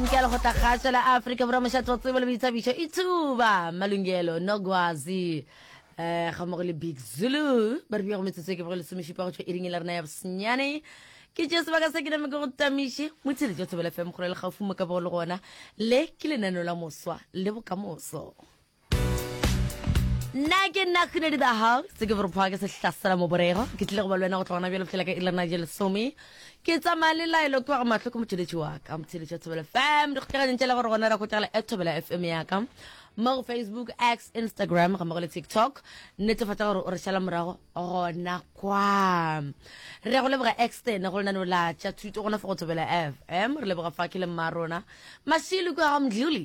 Nkela go tla kgaša la Afrika Borwa mošato wa tsebo le boithabišo e thuba Malungelo Nogwazi eh, ga mmogo le Big Zulu ba re bja go metsotso e ke bogole lesomešupa go tšwa iring la rena ya bosenyane ke tšee sebaka se ke name ke go tamiše motshedi tša thobela fm kgore le gaufi mo ka bogo le gona le ke lenaneo la moswa le bokamoso nna ke nna kgunedi the house ke gore phoa ke sehlasela moborego ke tlile go ba le wena go tlogona bjalo fela ka ilana je lesome ke tsamaya le laelo ke wa go matlho ke motheletši wa ka motheletši wa thobela fm di kgotlaganyeng tšele gore gona ra kgotagala at thobela fm ya ka mo go facebook x instagram ga mmogo le tiktok netefatsa gore o re šala morago gona kwa re go leboga externe go lenaneo la tša thuto gona fa go thobela fm re leboga fa ke le mma rona mashilo kwa ga mdluli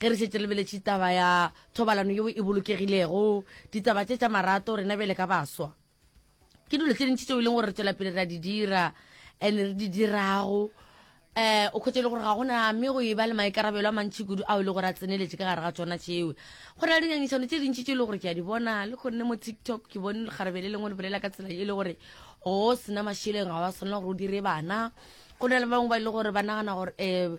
ge re šetse lebeletše taba ya thobalano yeo e bolokegilego ditaba tše tša marato rena bjale ka baswa ke dilo tse dintši tseo e leng gore re tswela pele ra di dira and re di dirago um o kgwetse e le gore ga gona mme go e ba le maikarabelo a mantšhi kudu ao e le gore a tseneletse ka gare ga tsona tšeo go na le dingangišano tse dintši tse e le gore ke a di bona le kgonne mo tiktok ke bone lekgarebe le lengwe le bolela ka tsela e le gore go sena mašeleng ga wa tshwanela gore o dire bana go na le bangwe ba e le gore ba nagana gore um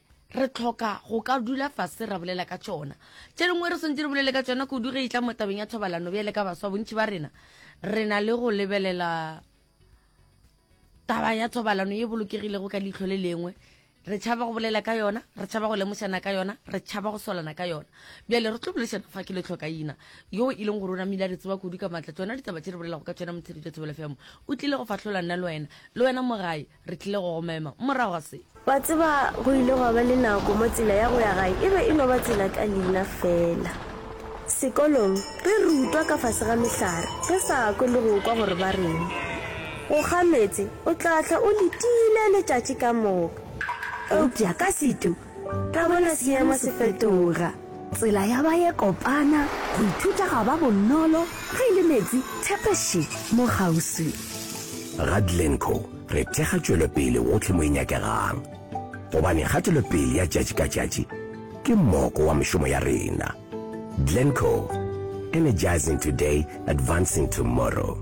re tlhoka go ka dula fase ra bolela ka tšona tše dingwe re swantse re bolele ka tšona kudu ge e tla mo tabeng ya thobalano bjale ka baswa bontši ba rena re na le go lebelela taba ya thobalano ye bolokegilego ka leitlho le lengwe re tšhaba go bolela ka yona re tšhaba go lemošana ka yona re tšhaba go swalana ka yona bjale re tlo bolešana fa ke letlhokaina yo e leng gore o namile a re tseba kudu ka maatla tsona ditaba tše re bolelago ka tsona motsheretša thobelafemo o tlile go fahlola nna le wena le wena mogae Re tlile go go mema morago ga se. Wa tseba, go ile gwa ba le nako mo tsela ya go ya gae e be e no ba tsela ka leina feela. Sekolong, re rutwa ka fase ga mehlare, re sa kwe le go kwa gore ba reng. Go kga meetse, o tla hlwa o letile letšatši ka moka. Eupša ka setu, Ka gona seemo se fetoga. Tsela ya ba ye kopana, go ithuta ga ba bonolo, ge e le meetse, thepeše mo kgauswi. Ga Glencoe re thekga tšwelopele gohle mo e nyakegang, gobane kgatelopele ya tšatši ka tšatši ke moko wa mešomo ya rena. Glencoe, Energizing Today, Advancing Tomorrow.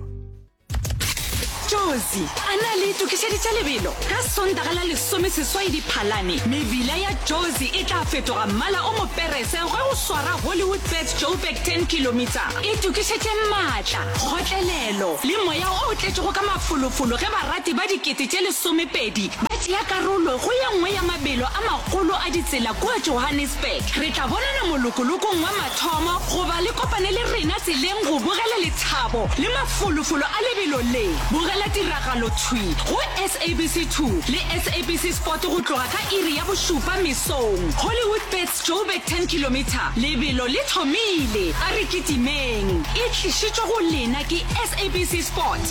josi a na le itokišeditše lebelo ka sondaga la lesomeseswai diphalane mebila ya josi e tla fetoga mmala o moperese ge o swara hollywood bet joburg 10 kilomita e tokišetše maatla kgotlelelo le moya o tletšego ka mafolofolo ge barati ba dikete tše lesomepedi ba tšea karolo go ye nngwe ya mabelo a magolo a ditsela kua johannesburg re tla bonana molokolokong wa Thoma go ba le kopane le rena tseleng go bogela lethabo le mafolofolo a lebelo le. Bogela tiragalo thwi go SABC 2 le SABC Sport go tloga ka iri ya bošupa mesong. Hollywoodbets Joburg 10 kilometre, lebelo le thomile, a re kitimeng! E tlišitšwe go lena ke SABC Sport.